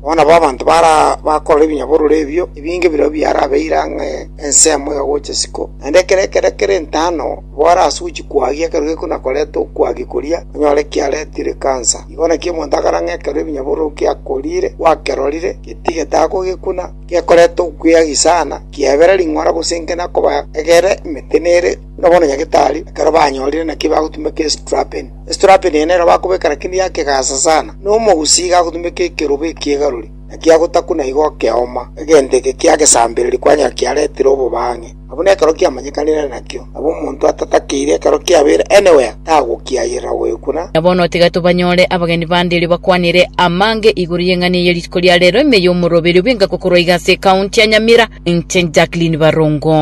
Bono nabo abanto bara bakorora ebinyabororo ebio ebinge birobio biarabeire ang'e ensemo ya gocha isiko, naende ekero ekero kere entano nabo arase gochia kwagia ekero gekona koreta okwagia koria onyore kiaretire ekansa. Igo naki omonto akore ang'e ekero ebinyabororo giakoriire gwakerorire getige tagokekuna, gekoreta okweagi sana, kiebera ring'ora gose enkena koba egere emetenere, buna bono nyagetari ekero banyorire naki bagotumeka estrapen. Esiterape nigo nere bakobeeka rakini yakegaasa sana, na omogusii iga agotumeka ekeroba ekiegarori, na kiagotakuna igo ekeoma, egento eke ki'agesambereri kwanyora kiaretire obobang'e. Abwo nekero kiamanyekanire nakio, nabo omonto atatakeire ekero kiabeire anywhere tagokiayerera goyokuna. Na bono tiga tobanyore abageni bande erio bakwanere amange igoro y'eng'ana eye ya rituko ria reero, ime y'omoroberio bw'engaki korwa iga ase ekaunti ya Nyamira. Inche Jacqueline Barongo.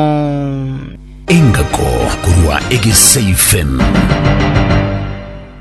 Engako korwa egeseifen.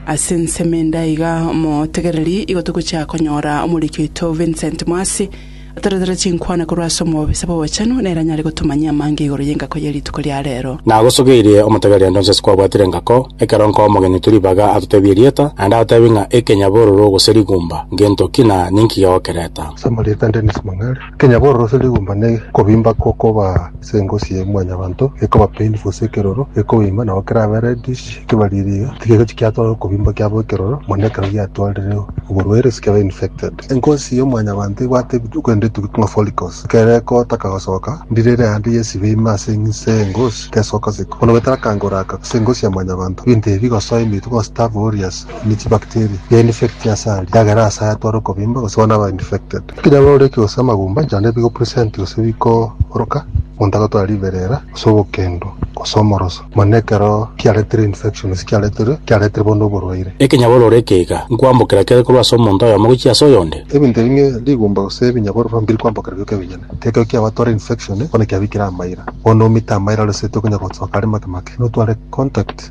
Ase ensemo ende iga omotegereri igo togochia konyora omoriki oito Vincent Mwasi atoretere chinkwana korwa ase omobisa bw'obochenu nere anyare gotomanyia amange igoro y'engako ye rituko ria reero. Nagosogeirie omotegereri onde onsi ase kwabwatire engako, ekero nkoa omogenyi twe ribaga atotebie erieta, naende agotebi ng'a ekenyabororo gose rigumba, ngento ki na ninki gegokereta. Ase amarieta Dennis Mang'are. Ekenya bororosio rigomba ne kobimba gokoba ase engosi ya mwanyabanto, gekoba painful ase ekeroro, gekoba ime nabo kerabe reddish, ekebaririga tigegochi kiatwara okobimba kiabo ekeroro, mono ekero giatwarire oborwaire ase kiabe infected. Engosi ya mwanyabanto ebwate ebitu korende etugi ng'a follicles, ekero egotaka gosoka, ndirere aande yesibe ime ase ense y'engosi tesoka siko. Bono goetera akango oraka ase engosi ya mwanyabanto, ebinto ebi bigosoa ime ituko gose taba ori ase ime chibacteria, yainfecti ase aria, yagera ase ayatwara okobimba gose bono aba infected. Kinya baroreke gose amagumba inche naende bigo present gose bikoroka, omonto agotwara ribera era gose obokendo gose omoroso, mono ekero kiaretire infection gose kiaretire kiaretire bono oborwaire. Ekinya bororeke iga, nkwambokera kere korwa ase omonto oyomo gochia ase oyonde. Ebinto ebi ng'a rigumba gose ebinyabororo mbiri kwambokera bioka ebinyene, ekero kiabatwara infection bono kiabikire amaira, bono omite amaira ore seti okonyara gosoka are make make, notware contact.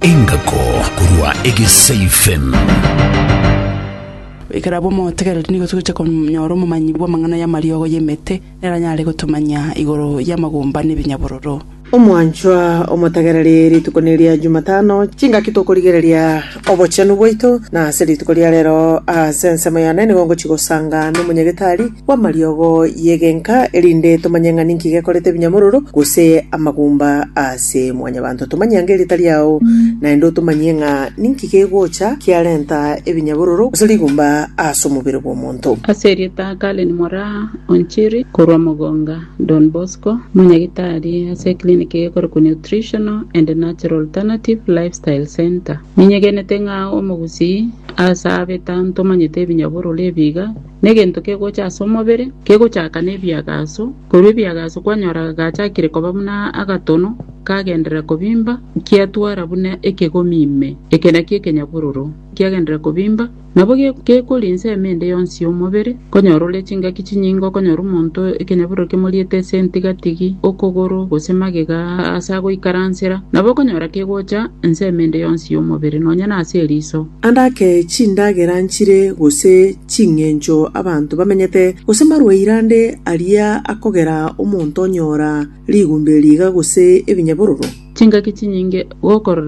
Engako korwa Egeseifen. Goika nabwo motegereri nigo togocha konyora omomanyi bw'amang'ana y'amariogo y'emete, neranyare gotomanyia igoro y'amagumba n'ebinyabororo. Omwanchwa omotegereri, rituko neria Jumatano, chingaki tokorigereria obochenu bwaito, na ase rituko ria rero ase ensemo yane nigo ngochia gosanga nomonyagitari, bw'amariogo y'egenka, erinde tomanye ng'a ninki gekorete ebinyamororo, gose amagumba ase mwanyabanto. Tomanye ange erieta riao, naende otomanyie ng'a ninki kegocha kiarenta ebinyabororo gose rigumba ase omobere bw'omonto. Ase erieta Karen Moraa Onchiri korwa Mugonga Don Bosco, Omonyagitari ase ekiliniki egekorekwa Nutritional and Natural Alternative Lifestyle Centre, ninyegenete ng'a omogusii ase abe tantomanyete ebinyabororo ebiiga, Negento kegocha ase omobere kegochaka nebiagaso, korwa ebiagaso kwanyoraga gachakire koba buna agatono kagenderera kobimba, nkiatwara buna ekegomi ime, eke nakio ekenyabororo, nkiagenderera kobimba. Nabo gekori ensemo ende yonsi y'omobere, konyora ore chingaki chinyinge, okonyora omonto ekenyabororo kemoriete ase entigatigi, okogoro, gose magega ase agoikaransera, nabo okonyora kegocha ensemo ende yonsi y'omobere, nonya nase eriso. Ande ake chindagera nchire gose ching'encho abanto bamenyete, gose marwaire ande aria akogera omonto onyora rigumbe riiga gose ebinyabororo. Chingaki chinyinge gokorora.